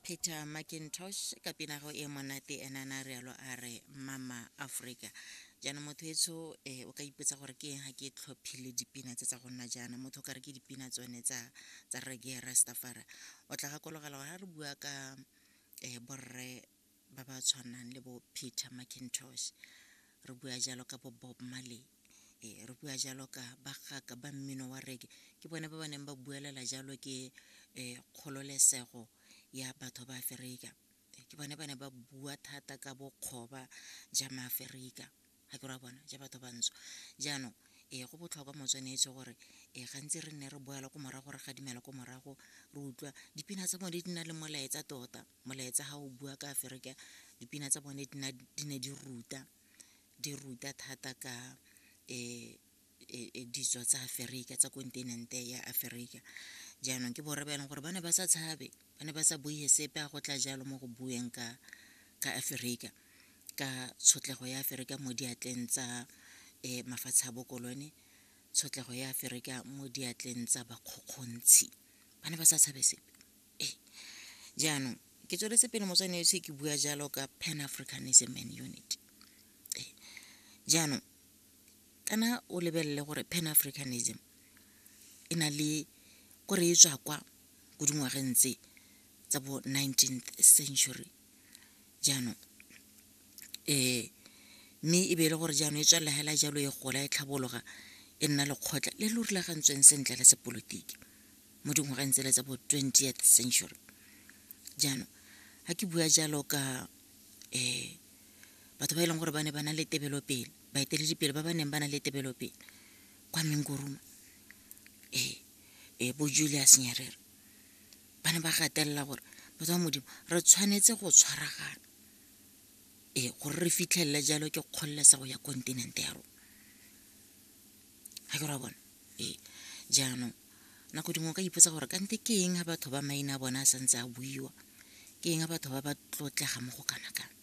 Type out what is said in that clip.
peter macintosh ka pinago e monate ena na rialo a re mama aforika jaanong motho etsho um eh, o ka ipotsa gore ke eng ga ke tlhophile dipina tse tsa go nna jaana motho o ka re ke dipina tsone tsa tsa rege rastafara o tla gakologela gore ga re bua ka um borre ba ba tshwanang le bo peter macintosh re bua jalo ka bo bob marley e re bua jalo ka bagaka ba mmino wa reke ke bone ba ba neng ba buelela jalo ke um kgololesego ya batho ba aferika ke bone ba ne ba bua thata ka bokgoba ja maaferika ga ke ra bona ja batho bantsho jaanong ee go botlhokwa motsweneetso gore ee gantsi re nne re boela ko morago re gadimela ko morago re utlwa dipina tsa bone di na le molaetsa tota molaetsa ga o bua ka aferika dipina tsa bone di ne di ruta di ruta thata ka um e, e, ditso tsa aferika tsa kontinente ya aferika jaanong ke borre ba e leng gore ba ne ba sa tshabe ba ne ba sa buie sepe a go tla jalo mo go bueng ka ka aferika ka tshotlego ya aferika mo diatleng tsa um mafatshe a bokolone tshotlego ya aferika mo diatleng tsa bakgokgontshi ba ne ba sa tshabe sepe ee jaanong ke tsweletse pele motswane yotlhe ke bua jalo ka pan africanism and unity ee jaanong kana o lebelele gore pan africanism e na le ko re e tswa kwa ko dingwageng tse tsa bo nineteenth century jaanong um mme e be e le gore jaanong e tswelela hela jalo e gola e tlhabologa e nna lekgotla le lo rulagantsweng sentle la sepolotiki mo dingwageng tsele tsa bo twentieth century jaanong ga ke bua jalo ka um batho ba e leng gore ba ne ba na le tebelopele baeteledipele ba ba neng ba na le tebelopele kwa mengoruma ee ee bo julius nyerere ba ne ba gatelela gore batho ba modimo re tshwanetse go tshwaragana ee gore re fitlhelele jalo ke kgololesego ya kontinente ya rona ga ke ra bona ee jaanong nako dingwe o ka ipotsa gore kante ke eng ga batho ba maina a bona a santse a buiwa ke eng ga batho ba ba tlotlega mo go kana kana